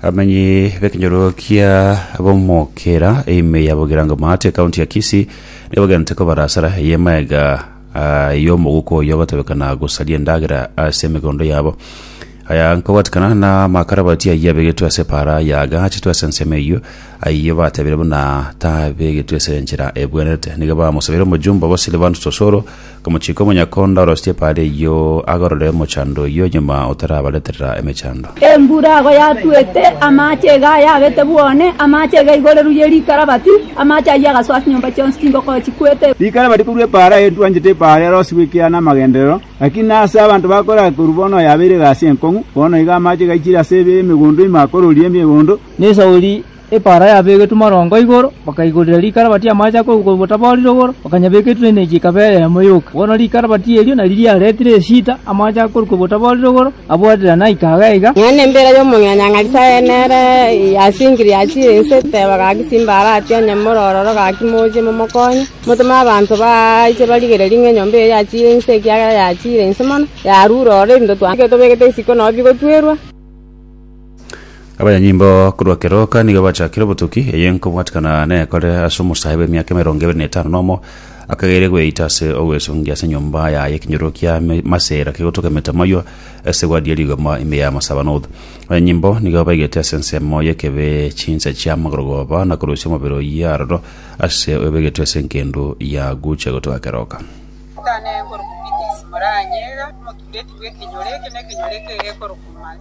amenyi b'ekenyoro kia bomokera eime ya bogeranga maate ekaunti ya kisi nigo bagente kobara asara eye maega ah, y'omoguko oyo batebekana gosaria endagera ase emegondo yabo aya nkobwatikana na makarabati ayio abegetwe ase para yaga achetwe ase ensemo eyio ayio batebire buna tabegetwe ase enchera ebwenerete nigo bamosabeire omojumbe obo silvanus osoro Akamochika omonyakonda orostie pari eyio agarore omochando oyio nyuma otarabareterera emechando. Embura ago yatuete, amache iga ayabete bwone, amache iga igoreru ye rikarabati, amache ayio agasoa chinyomba chionsi chingokoo chikwete. Rikarabati korwa epaara aye twanchete epaara erosiwe ekiagera namagenderero, lakini aase abanto bakorera korwa bono yabeire egasi enkong'u, bono iga amache gaichire ase emegondo ime akororie emegondo, nesauri Epaara yabegetwe marongo igoro, bakaigoria rikara batie amache a kogwa botaboorire igoro, bakanyabeka etwenechi ekaba eyemo yoka. Bono rikara batie erio nario riaretire esita, amache a korukwa botaboorire igoro abwaterana aika iga iga. Nonya nembira y'omong'ina Nyasae nere yasingirie ase ense, teba gaki simba aratie onye more ororo gaki moche momokonye. Motome abanto baache barigererie ng'a enyomba eye yachiire inse, ekiagera yachiire inse mono, yarure ororo ebinto twanchete tobegete isiko nao bigotwerwa. Abanyanyimbo korwa keroka nigo bachakire obotuki, eye nkobwatikana nekore ase omosae bw'emiaka emerongo ebere na etano nomo, akageire gweita ase ogwesongia ase enyomba yaye ekenyoro kia me- masera kegotoka emetamayo ase egwadi ye rigoma ime ya Masabanot. Abanyanyimbo nigo baigete ase ensemo y'ekebe chinsa chia magorogoba na korusia omobere oyio aroro ase oyobegetwe ase engendu ya gucha gotoka keroka. Tane ekorokwa Pithis, moranyega, motureti bw'ekenyoro eke nekenyoro eke ekorokwa Mas.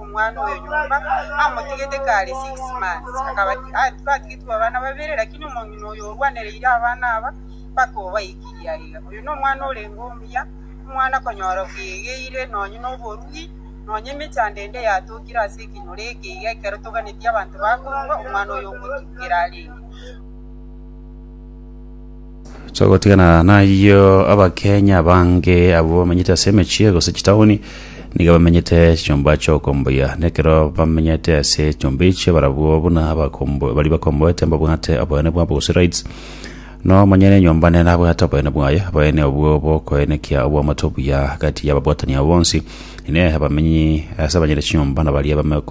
omwana oyo nyomba, amotigete kare six months, akaba batigetigwe abana babere, lakini omong'ina oyo orwanereire abana aba mpaka obaikirie aiga. Oyo nomwana orenge omuya, omwana konyora bwegeire nonye noborugi, nonye emechando ende yatokire ase ekenyoro eke iga ekero toganeti abanto bakorua, omwana oyo ogotukera arenge. Togotigana nayio abakenya abange abwo bamenyete ase emechie gose chitaoni niga bamenyete chinyomba chi'okomboyia nekero bamenyete ase enyomba echio barabwo buna abakombo- baria bakomboete mbabwate oboene bwabo gose rights na omonyene enyomba nere nabwate oboene bwaye oboene obwo bokoenekia obwamato obuya agati y'ababwatani abo bonsi inee abamenyi ase abanyene chinyomba na baria bame- kom-